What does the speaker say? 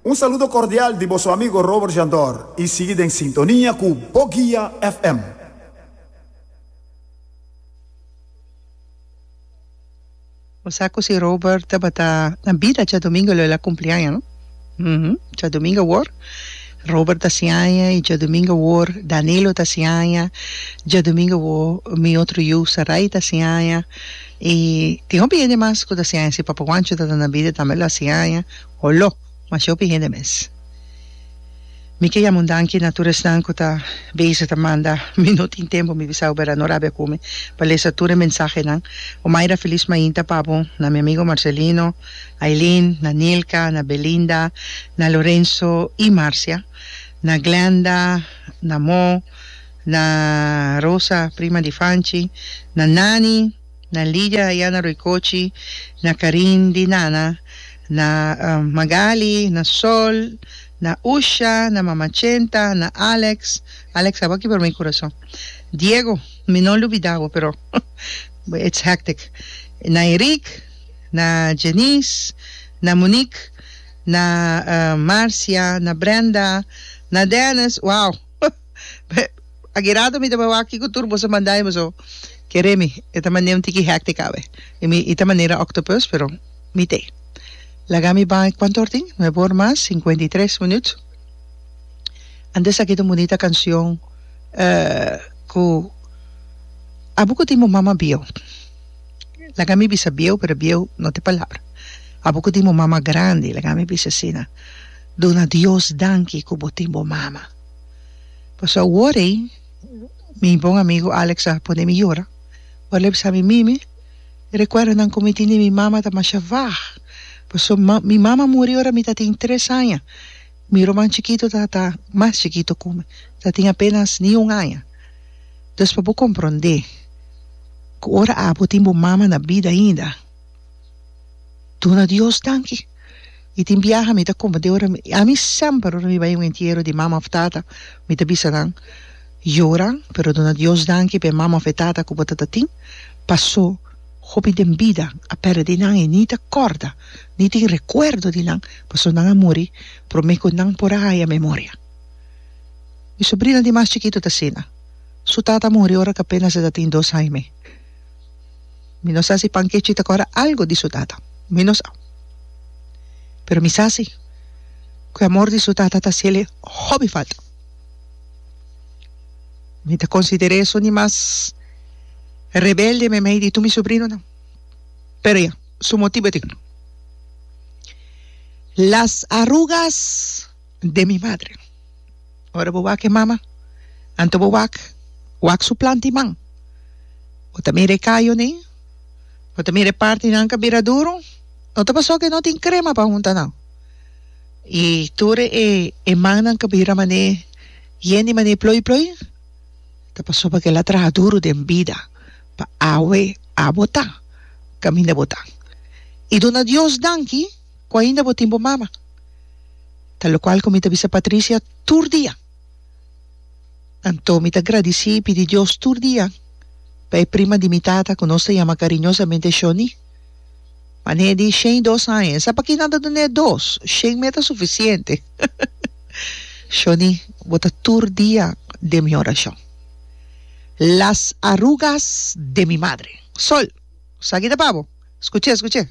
Un saludo cordial di boso amigo Robert Jandor y sigui den sintonia cu Bo Guia FM. Bo sa cu si Robert tabata na bida Djadomingo lo el a cumpli aña no? Hm Djadomingo awor Robert ta haci aña y Djadomingo awor Danilo ta haci aña Djadomingo awor mi otro yu Sarai ta haci aña. I tin hopi hende mas ku ta hasi aña si papa Guancho ta na bida tambe lo hasi aña o lo mas hopi hende mes. Mi ke yama un danki na tur esnan ku ta beza ta manda mi no tin tempu mi bisa Oberá no rabia ku mi pa lesa tur e mensahenan Omaira Feliz Mainta pa bo na mi amigo Marcelino Ailin na Nilka na Belinda na Lorenzo i Marcia na Glenda na Mo Na Rosa, prima di Fanchi, na Nani, na Lidia ayá na Roikochi, na Karin di Nana, na Magali, na Sol, na Usha, na Mama Chenta, na Alex, Alex tabata aki pero mi kurason, Diego, mi no lubidá bo pero it's hectic, na Eric, na Jeniz, na Monic, na Marcia, na Brenda, na Dennis, wow! Agirado mi ta bawa aki ku tur boso manda mi boso kere mi. E ta mane un tiki hectic awe. I mi i ta manera octopus pero mi te laga mi bai kuantu or tin? Nuebe or mas sinkuenta i tres minut. Antes aki ta un bunita kanshon ku Abu ku tin bo mama bieu laga mi bisa bieu pero bieu no te palabra. Abu ku tin bo mama grandi laga mi bisa asina. Duna Dios danki ku bo tin bo mama. Pasobra wor ei mi bon amigo Alex a pone mi yora. Ora el a bisa mi, Mimi, e rekuerdonan ku mi tin di mi mama ta masha vag. Pasobra mi mama muri ora mi ta tin tres aña. Mi ruman chikitu tabata mas chikitu ku mi, ta tin apenas ni un aña. Dus pa bo komprondé ku ora abo tin bo mama na bida ainda. Duna Dios danki y tin biaha mi ta comprometeu ora mi ami semper ora mi bai un entiero di mama of tata mi ta bisa nan yora pero duna Dios danki p'e mama of e tata cu bo ta ta tin paso hopi den bida a perde nan y ni ta corda ni tin recuerdo di nan paso nan a muri prome cu nan por a haya memoria mi sobrina di mas chikito ta asina su tata a muri ora cu apenas e ta tin dos aña me Mi no sa si Pankechi ta kòrda algu di su tata. Mi no sa. Pero mi sa si ku e amor di su tata ta hasiel e hopi falta. Mi ta konsider'é su di mas rebelde meimei di tur mi subrinonan. Pero ya, su motibu tin. Las arugas. de mi madre. Ora bo wak e mama, anto bo wak, wak su planta i man. Bo ta mira e kayo nei, bo ta mira e partinan ka bira duru, no ta pasó ku e no tin krema pa hunta nan. I tur e e mannan ka bira man'é yen di man'é ploi ploi, ta pasó pakel a traha duru den bida pa awe a botá kaminda botá. I duna Dios danki. ku ainda bo tin bo mama. Ta lokual ku mi ta bisa Patricia tur dia. Anto mi ta gradisí i pidi Dios tur dia pa e prima di mi tata ku nos ta yama kariñosamente Shoni. Manhé di shen i dos aña, e sa pakí nan ta dun'é dos, shen mei ta sufisiente. Shoni, bo ta tur dia den mi orashon. Las arrugas de mi madre. Sol, esaki ta pa bo. Skuch'é, skuch'é.